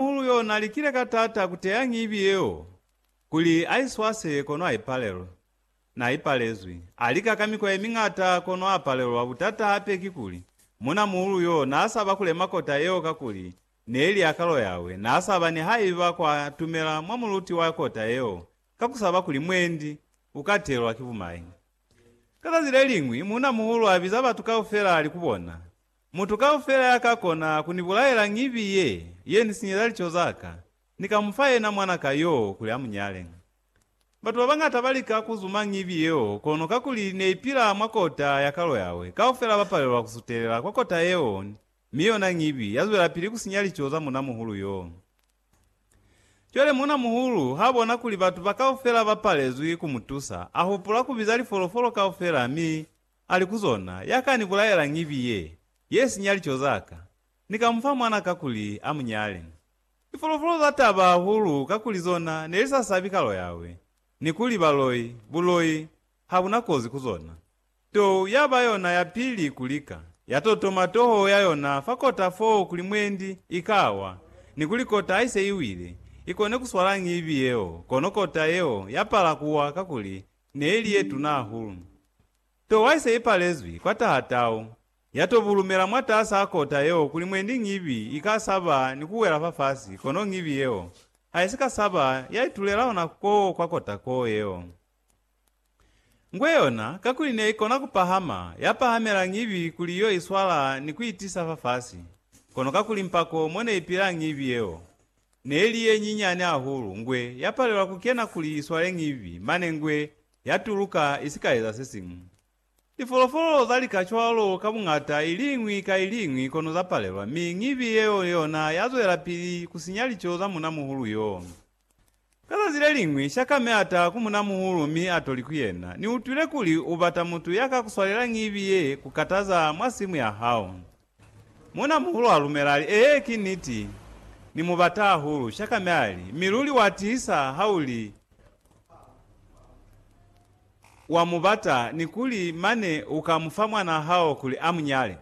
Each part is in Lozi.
Muhulu yo na likile ka taata ku teya ngibi yeo kuli a i swase kono a ipalelwe. Na ipalezwi. A lika ka mikwa ye miñata kono a palelwa. Butata hape kikuli, muna muhulu yo na saba ku lema kota yeo kakuli neli ya kalo yawe. Na saba nihaiba kwa tumela mwa muluti wa kota yeo ka ku saba kuli mwendi u ka telwa ki bumai. Ka zazi le liñwi, muna muhulu a biza batu kaufela a li ku bona, Mutu kaufela ya ka kona ku ni bulaela ngibi ye, ye ni sinyeza lico za ka, ni ka mu fa yena mwana ka yo kuli a mu nyale. Batu ba bañata ba lika ku zuma ngibi yeo, kono kakuli ne i pila mwa kota ya kalo yawe, kaufela ba palelwa ku sutelela kwa kota yeo, mi yona ngibi ya zwelapili ku sinya lico za munamuhulu yo. Cwale munamuhulu ha bona kuli batu ba kaufela ba palezwi ku mu tusa, a hupula ku biza lifolofolo kaufela mi Ali ku zona, Ya ka ni bulaela ngibi ye, ye sinya lico za ka, Ni ka mu fa mwana kakuli a mu nyale. Lifolofolo za taba hahulu kakuli zona ne li sa sabi kalo Yawe, ni kuli baloi, buloi, ha bu na kozi ku zona. Tou ya ba yona ya pili ku lika, ya totoma toho ya yona fa kota foo kuli mwendi i ka wa, ni kuli kota ha i se i wile, i kone ku swala ngibi yeo, kono kota yeo ya pala ku wa kakuli neili yetuna hahulu. To waise ipalezwi kwa taha tau, yato bulumela mwataasa a kota yeo kuli mwendi ñibi ika saba ni kuwela fafasi kono ñibi yeo haisika saba yaitulela hona koo kwa kota koo yeo. Ngwe yona kakuli neikona kupahama yapahamela ñibi kuli yo iswala ni kuitisa fafasi, kono kakuli mpako moneipila ñibi yeo. Ne li ye nyinyani hahulu, ngwe ya palela ku kena kuli i swale ñibi, mane ngwe ya tuluka i si ka eza se siñwi. Lifolofolo za lika cwalo ka buñata i liñwi ka i liñwi kono za palelwa, mi ñibi yeo yona ya zwelapili ku sinya lico za munamuhulu yo. Ka zazi leliñwi, Shakame a taha ku munamuhulu mi a to li ku yena, Ni utwile kuli u bata mutu ya ka ku swalela ñibi ye ku kataza mwa simu ya hao. Munamuhulu a lumela, a li, Ee, ki niti. Ni mu bata hahulu. Shakame a li, Mi luli wa tiisa ha u li wa mu bata ni kuli mane u ka mu fa mwanaa hao kuli a mu nyale.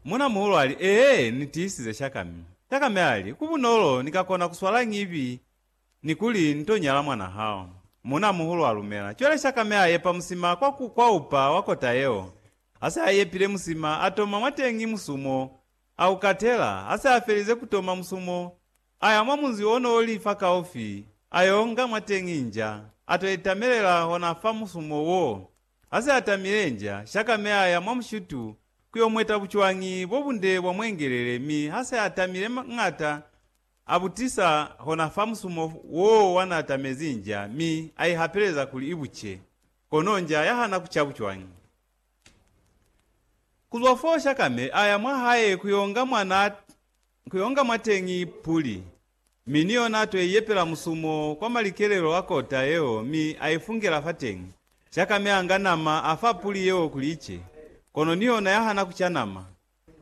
Muuna-muhulu ali, Ee, ni tiisize shaka mi. Shaka mi ali, Ku bunolo ni ka kona ku swala ñibi ni kuli ni to nyala mwan'a hao. Muuna-muhulu a lumela. Cwale shaka mi a yepa musima kwa ku kwaupa wa kota yeo. Ha se a yepile musima, a toma mwateñi musumo, a u katela. Ha se a felize ku toma musumo, a ya mwa munzi o n'o li fakaufi, a y'o nga mwateñi nja, a t'o itamelela hona fa musumo w'o. Hase atamile inja, Shakame aya mwa mushitu kuyo mweta bucwañi bobunde bwa mwengelele mi hase atamile m'ata abutisa hona fa musumo woo wanaatamezi inja mi aihapeleza kuli ibuce, kono inja yahana kuca bucwañi. Kuzwa foo Shakame aya mwahae kuyonga mwanateñi Puli. Mi ni yona ato yaiyepela musumo kwa malikelelo a kota yeo mi aifungela fateñi. Shakame anga nama afa puli yeo kuli ice, kono ni yona yahana kuca nama.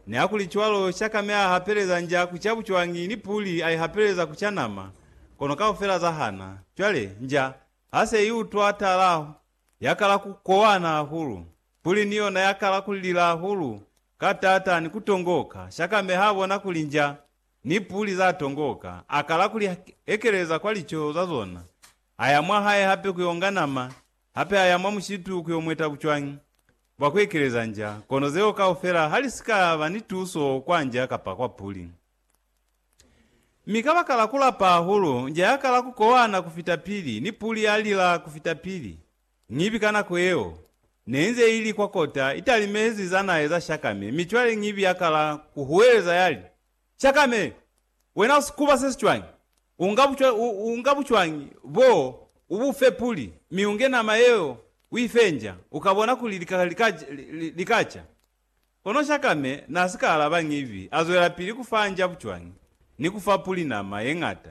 Nihakuli cwalo, Shakame ahapeleza nja kuca bucwañi ni puli aihapeleza kuca nama, kono kaufela zahana. Cwale, nja hase iutwa tala, yakala kukowana hahulu. Puli ni yona yakala kulila hahulu ka taata ni kutongoka. Shakame habona kuli nja ni puli za tongoka, a kala ku li ekeleza kwa lico za zona, a ya mwa hae hape ku yo nga nama, hape a ya mwa mushitu ku yo mweta bucwañi bwa ku ekeleza nja, kono zeo kaufela ha li si ka ba ni tuso kwa nja kapa kwa puli. Mi kabakala ku lapa hahulu, nja ya kala ku kowana ku fita pili, ni puli ya lila ku fita pili. Ñibi ka nako yeo, neinze ili kwa kota italimezi zanaye za Shakame, mi cwale Ñibi yakala kuhuweleza yali, Shakame! Wena usikuba sesicwañi? Unga bucwa, u, unga bucwañi boo, ubufe puli, mi unge nama yeo uifenja, ukabona kuli lika, lika, likaca. Kono Shakame n'a si ka alaba ñivi, a zwelapili ku fa njabu cwañi, ni ku fa puli nama ye ñata.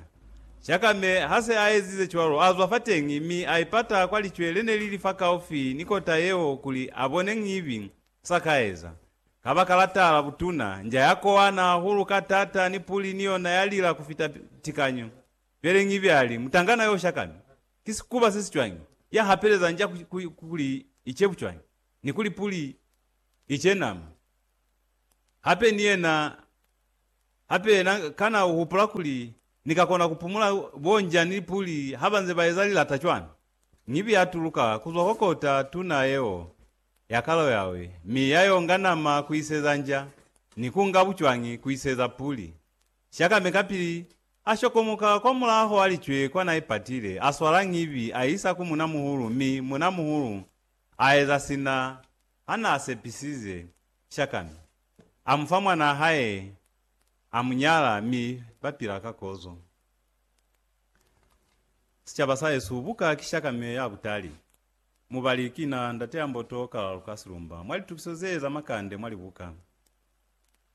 Shakame ha se a ezize cwalo, a zwa fateñi mi a ipata kwa licwe le ne li li fakaufi ni kota yeo kuli a bone ñivi s'a ka eza. Kabakala tala butuna, nja ya kowana hahulu ka t'ata ni puli ni yona ya lila ku fita tikanyo. Cwale ñivi a li, Mutangana yo Shakame, ki sikuba se si cwañi, ya hapeleza nja kuli i cebu cwañi! ni kuli puli i cenama hape ni yena hape. Yena kana u hupula kuli ni ka kona ku pumula bonjani puli ha ba nze ba eza lilata cwana? Ñibi ya tuluka ku zwa kwa kota tuna yeo ya kalo yawe, mi ya yonga nama ku iseza nja, ni ku nga bucwangi ku iseza puli. Shakame kapili a shokomoka kwa mulaho a licwe kwa na ipatile, a swala ñibi a isa ku munamuhulu, mi munamuhulu A eza sina ha n'a sepisize Shakami. A mu fa mwan'a hae, a mu nyala, mi ba pila ka kozo. Sicaba sa hesu buka ki Shakami ya butali. Mubali ki na Ndateamboto Kalalukasilumba mwa litukiso ze za makande mwa libuka.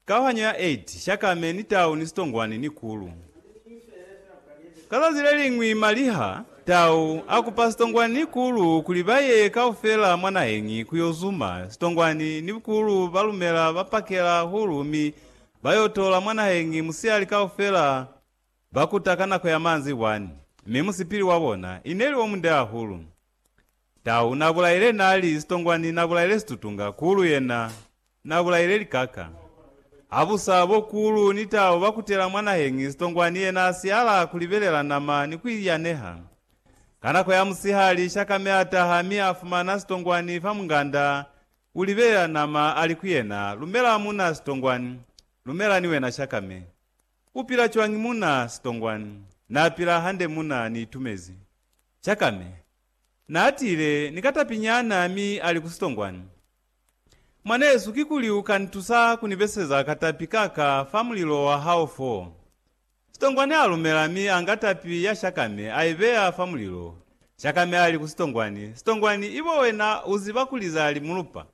Kauhanyo ya Eid, Shakame ni tau ni sitongwani ni kulu. Ka zazi leliñwi maliha tau a kupa sitongwani ni kulu kuli ba ye kaufela mwa naheñi ku yo zuma, sitongwani ni kulu ba lumela ba pakela hulu mi ba yo tola mwa naheñi musihali kaufela ba kuta ka nako ya manzibwani, mi musipili wa bona ineli o munde hahulu. Tau na bulaile nali, Sitongwani na bulaile situtunga, Kulu yena na bulaile likaka. Habusa bo Kulu ni Tau ba kutela mwa naheñi, Sitongwani yena a siyala ku libelela nama ni ku iyaneha. Ka nako ya musihali, Shakame a taha mi a fumana Sitongwani fa munganda, u libelela nama, a li ku yena, Lumela muna Sitongwani, lumela ni wena Shakame. U pila cwañi muna? Sitongwani, Na pila hande muna, ni itumezi. Shakame, Naatile ni ka tapi nyana mi ali ku sitongwani, Mwanesu, kikuli u ka nitusa ku ni beseza ka tapi ka ka fa mulilo wa hao fo? Sitongwani alumela mi anga tapi ya Shakame a ibeya fa mulilo. Shakame ali ku sitongwani, Sitongwani, ibo wena uziba kuli za li mulupa.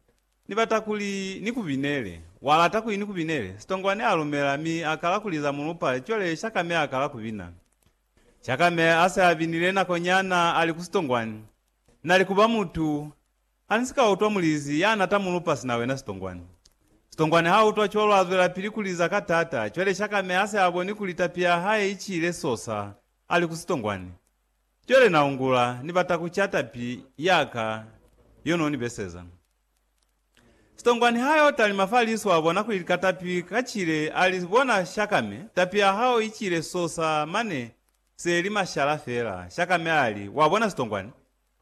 Ni bata kuli ni ku binele. Wa lata kuli ni ku binele? Sitongwani alumela mi akala kuli za mulupa, cwale Shakame akala ku bina. Chakame ase abinile nako nyana ali ku sitongwani, nali kuba mutu hanisika utwa mulizi yana ta mulupa sina wena sitongwani. Sitongwani ha utwa cwalo azwelapili kuliza ka tata, cwale Chakame ase aboni kuli tapi ya hae icile sosa ali ku sitongwani. Cwale naungula ni bata kuca tapi yaka yo noni beseza. Sitongwa niha yo talima fa liso a bona kuli lika tapi ka cile a li, Bona Shakame, tapi ya hao i cile sosa mane se li mashala fela. Shakame a li, Wa bona Sitongwani?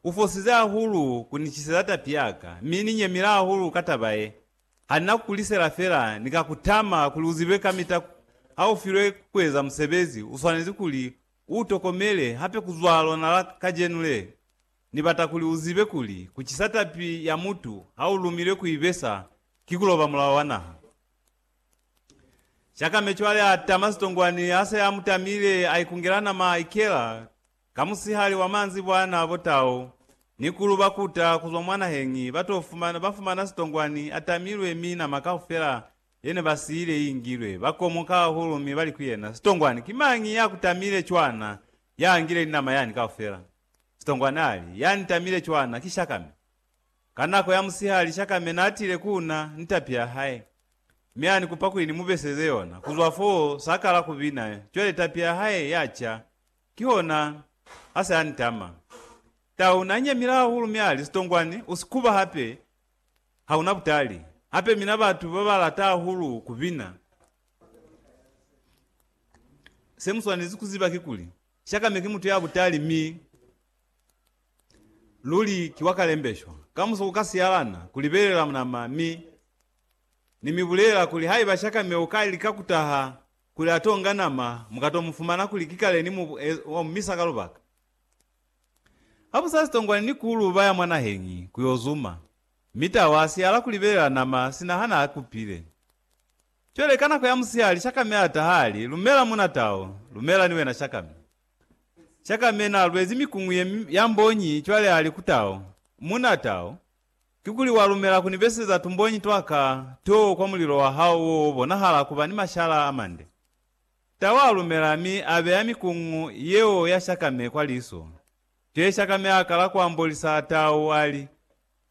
U fosize hahulu ku ni ciseza tapi ya ka, mi ni nyemile hahulu ka taba ye. Ha ni na ku ku lisela fela, ni ka ku tama kuli u zibe kamita ha u filwe ku eza musebezi, u swanezi kuli u u tokomele hape ku zwa lona la kajenu le. Ni bata kuli u zibe kuli ku cisa tapi ya mutu ha u lumilwe ku i besa ki ku loba mulao wa naha. Shakame cwale a tama sitongwani ha se a mu tamile, a ikungela nama a ikela ka musihali wa maanzibwana bo tau ni kulu ba kuta ku zwa mwa naheñi ba to fumana, ba fumana sitongwani a tamilwe mi nama kaufela ye ne ba siile i ingilwe. Ba komoka hahulu mi ba li ku yena, Sitongwani, ki mañi ya ku tamile cwana ya angile ni nama yani kaufela? Sitongwa nali, Ya nitamile cwana ki Shakame. Ka nako ya musihali, Shakame naatile ku na ni tapi ya hae, mi anikupa kuli nimubeseze yona. Kuzwa foo, sakala kubina, cwale tapi ya hae yaca, kihona ase anitama. Tau nanyemile hahulu mi ali, Sitongwani, usikuba hape, hauna butali. Hape mina batu babalata hahulu kubina. Semuswanezi kuziba kikuli, Shakame ki mutu ya butali mi luli ki wa kalembeshwa. Kamuso ku ka siyalana ku libelela nama mi Ni mi bulela kuli haiba Shakame u ka lika ku taha kuli a to nga nama, mu ka to mu fumana kuli ki kale ni mu wa mu misa ka lubaka. Ha bu sa sitongwani ni ku lu baya mwa naheñi ku yo zuma, mi Tau a siyala ku libelela nama sina ha na kupile. Cwale ka nako ya musihali Shakame a taha a li, Lumela, muna tau, lumela ni wena Shakame. Shakame na lwezi mikuñu ye ya mbonyi cwale a li ku tau, Muna tau, kikuli wa lumela ku ni beseza tumbonyi twa ka to kwa mulilo wa hao wo wo bonahala ku ba ni mashala a mande? Tau a lumela mi a beya mikuñu yeo ya Shakame kwa liso. Cwale Shakame a kala ku ambolisa tau a li,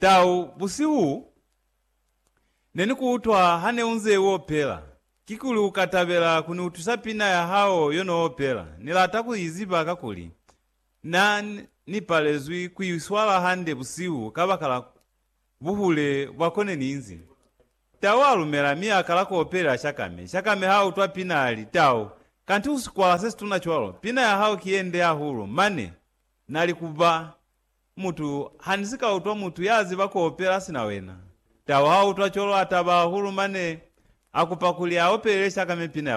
Tau, busihu Ne ni ku utwa ha ne unze u opela. Kikuli u ka tabela ku ni utwisa pina ya hao yo no opela? Ni lata ku i ziba kakuli na ni palezwi ku i swala hande busihu kabakala buhule bwa ko ne ni inzi. Tau a lumela mi a kala ku opelela Shakame. Shakame ha utwa pina a li, Tau, kanti u sikwala se situna cwalo? Pina ya hao ki ye nde hahulu! Mane na li ku ba. Mutu, Ha ni si ka utwa mutu ya ziba ku opela sina wena, tau ha utwa colo a taba hahulu mane a kupa kuli a opelele shaka mipina ya bona.